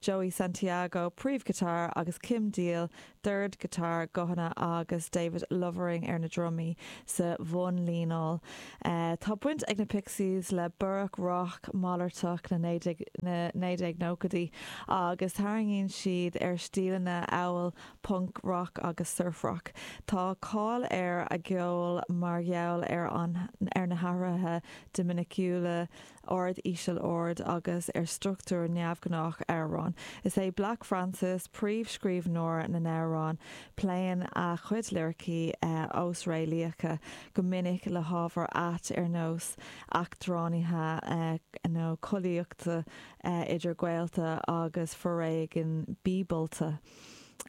Joey Santiago, príomhghiotáir, agus Kim Deal, dordghiotár, guthanna, agus David Lovering ar na drumaí sa bhunlíneáil. Tá baint ag na Pixies le borradh rac mhalartach na 1990idí agus tarraingíonn siad ar stíleanna amhail punc-rac agus surf-rac. Tá cáil ar a gceol mar gheall ar na hathruithe dinimiciúla, ard, íseal, ard agus ar struchtúr neamhghnách amhrán. Is é Black Francis príomhscríbhneoir na n-amhrán. Pléann a chuid liricí osréalaíocha, go minic le hábhair aite ar nós eachtránaithe nó collaíochta idir gaolta agus foréigean bíobalta.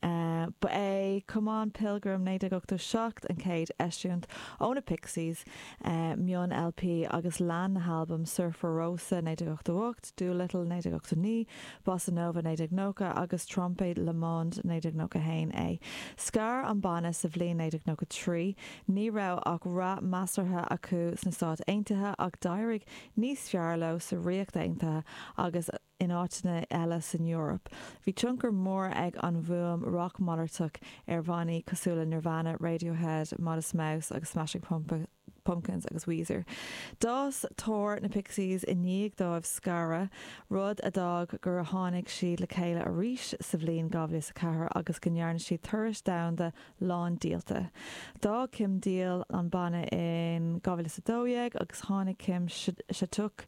Ba é Come on Pilgrim, 1987, an chéad eisiúint ó na Pixies, mion-LP, agus lean na halbaim Surfer Rosa, 1988, Doolittle, 1989, Bossanova, 1990, agus Trompe le Monde, 1991, é. Scar an banna sa bhliain 1993. Ní raibh ach rath measartha acu sna Stáit Aontaithe ach d'éirigh níos fearr leo sa Ríocht Aontaithe agus, in áiteanna eile san Eoraip. Bhí tionchar mór ag an bhfuaim rac mhalartach ar bhannaí cosúil le Nirvana, Radiohead, Modest Mouse, Smashing Pumpkins agus Weezer. D'fhás tóir na Pixies i ndiaidh dóibh scaradh, rud a d'fhág gur tháinig siad le chéile arís sa bhliain 2004 agus go ndearna siad turais dhomhanda lán díolta. D'fhág Kim Deal an banna in 2012 agus tháinig Kim Shattuck,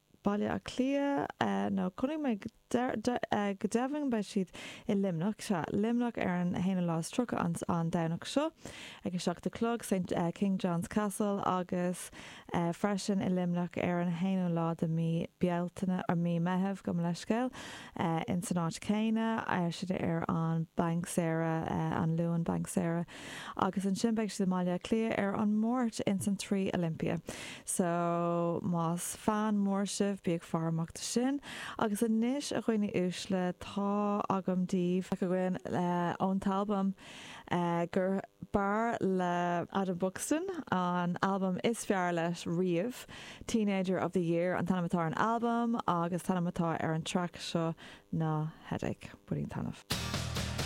Baile Átha Cliath, nó coinnigh mé go deimhin go mbeidh siad i Luimneach, sea, Luimneach ar an 31ú an an Domhnach seo ag a seacht a chlog, Saint King John's Castle, agus freisin i Luimneach ar an 1ú lá de mí Bealtaine, or mí Meitheamh, gabh mo leithscéal, in san áit chéanna, sin ar an Banc Saoire, an Luan Banc Saoire. agus ansin beidh siad i mBaile Átha Cliath ar an Máirt ins an Three Olympia so más fan mór sibh bí ag faire amach dó sin agus anois a dhaoine uaisle tá agam daoibh beidh againn ón t-albam gur b'fhearr le Adam Buxton an albam is fearr leis riamh Teenager of the Year an t-ainm atá ar an albam agus t-ainm atá ar an track seo ná Headache, bainigí taitneamh.